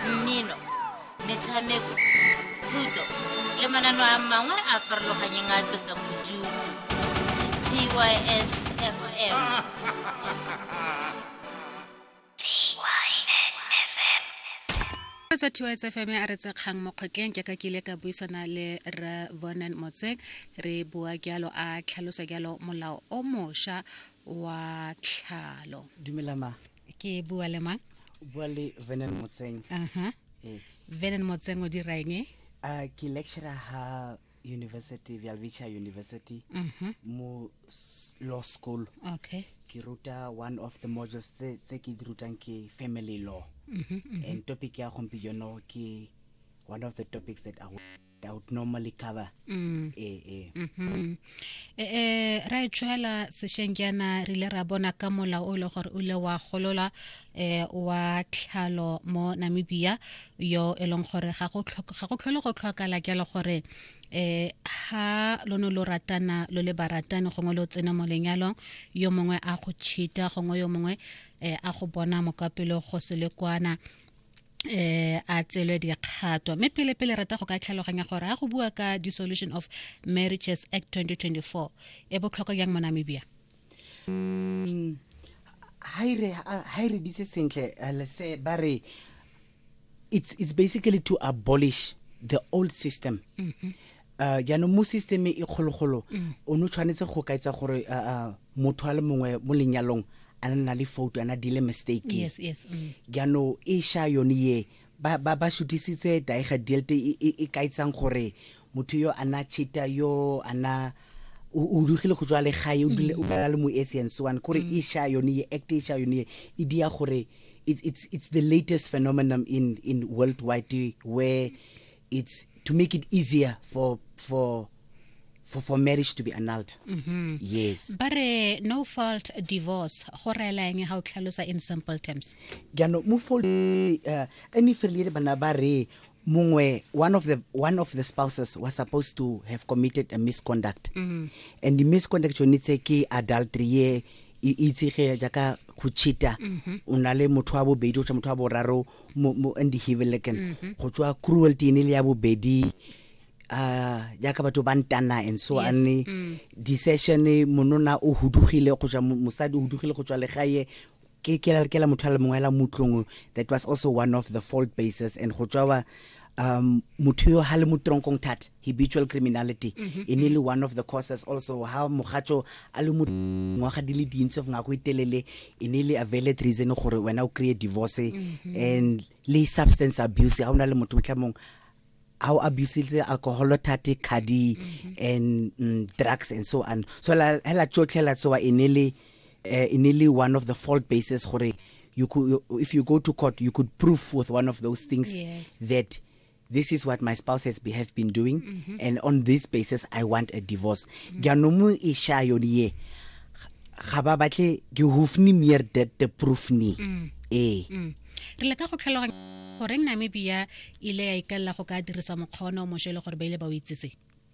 mmino metshameko thuto le manano a mangwe a farologanyeng a tlosang bodutu tys fm tswa tys fm a re tsekgang mo kgotleng jaaka ke ile ka buisana le re bonan motseng re bua jalo a tlhalosa jalo molao o mošwa wa tlhalo dumelama ke bua le mang o bua le venen motseng aha ee venen motseng o dira eng e? a ke lecturer ha university vialvicha university Mhm. mo s- law school okay ke ruta one of the modules tse tse ke di rutang ke family law Mhm, and topic ya gompieno ke one of the topics that I will doubt normally cover mm. e e mhm e e ra e tshwela seshenjana re le ra bona ka mola o le gore o le wa golola eh wa tlhalo mo Namibia yo e leng gore ga go ga go tlhole go tlhokala ke le gore eh ha lo no lo ratana lo le baratani gongwe lo tsena mo lenyalong yo mongwe a go chita gongwe yo mongwe eh, a go bona mokapelo go se le kwana eh a tselwe dikgato mme pele pele rata go ka tlhaloganya gore ga go bua ka dissolution of marriages act 2024 e botlhokwa jang mo namibia mm, ha e re ditse sentle eh, lese ba re it's, it's basically to abolish the old system mm -hmm. Uh, jaanong mo system e kgologolo mm. o ne o tshwanetse go ka etsa gore uh, uh, motho a le mongwe mo lenyalong a ne na le foto ana dile mistake yes, yes, mm. jaanong e sha yone ye ba ba ba shutisitse daega delte e, e, e ka etsang gore motho yo ana chita yo ana o dugile go tswa le gae o dule o dula le mo esi and so on gore mm. e sha yone ye act e sha yone ye e dia gore it's it's it's the latest phenomenon in in worldwide where it's to make it easier for for for, for marriage to be annulled mm -hmm. yes but uh, no fault divorce go rela eng ga o tlhalosa in simple terms jaanong mo fault uh, any failure bana ba re mongwe one of the one of the spouses was supposed to have committed a misconduct mm -hmm. and the misconduct yone tse ke adultery ye e itsege jaaka go cheata mm-hmm. o na le motho wa bobedi o tsa motho wa boraro mo mo in the Hivelekan mm -hmm. go tswa cruelty ene le ya bobedi uh jaaka batho ba ntana and so yes. ane mm. decision monona o hudugile go tswa mosadi o hudugile go tswa legae ke ke la motho a le mongwe la mutlong that was also one of the fault bases and go tswa um motho yo ha le mo tronkong thata habitual criminality mm -hmm. e ne le one of the causes also ha mogatso a le ngwaga di le dintsi of ngako itelele e ne le availed reason gore wena o create divorce mm -hmm. and le substance abuse ha ona le motho motlhamong a o abusile alcohol thate khadi mm -hmm. and mm, drugs and so on so la hela tsotlhela tsoa e ne le uh, in nearly one of the fault bases gore you could you, if you go to court you could prove with one of those things yes. that this is what my spouse has be, have been doing mm -hmm. and on this basis i want a divorce mm-hmm. jaanong mm -hmm. e sha yone ye ga ba batle ke hofni mere that the proof ni mm. ee mm. re le ka go tlhaloganya goreng namibia ile ya ikalela go ka dirisa mokgwa one o mošwa e le gore ba ile ba o itsetse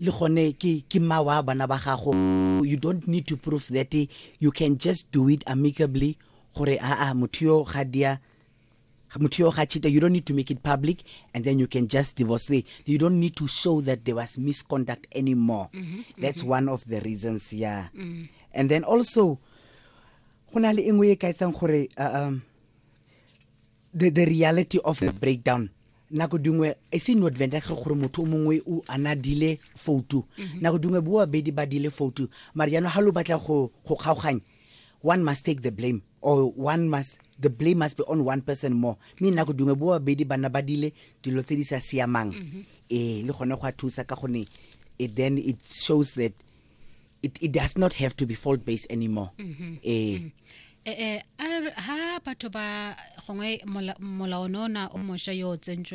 le gone ke ke mma wa bana ba gago you don't need to prove that you can just do it amicably gore aa motho yo ga dia motho yo ga cheater you don't need to make it public and then you can just divorce the you don't need to show that there was misconduct anymore mm -hmm, that's mm -hmm. one of the reasons yeah mm -hmm. and then also go na le engwe e ka etsang gore uh, um the, the reality of the breakdown nako dingwe e se no advantage gore motho o mongwe o ana dile foutu mhm. nako dingwe bo babedi ba dile foutu mara jaanong ga lo batla go kgaoganya one must take the blame or one must the blame must be on one person more mme nako dingwe bo babedi bana ba dile dilo tse di sa siamang mhm. ee le gone go a thusa ka gone it then it shows that it, it does not have to be fault based anymore mm -hmm. eh mm -hmm. eh ha batho ba gongwe molaono na o mosha yo tsentsweng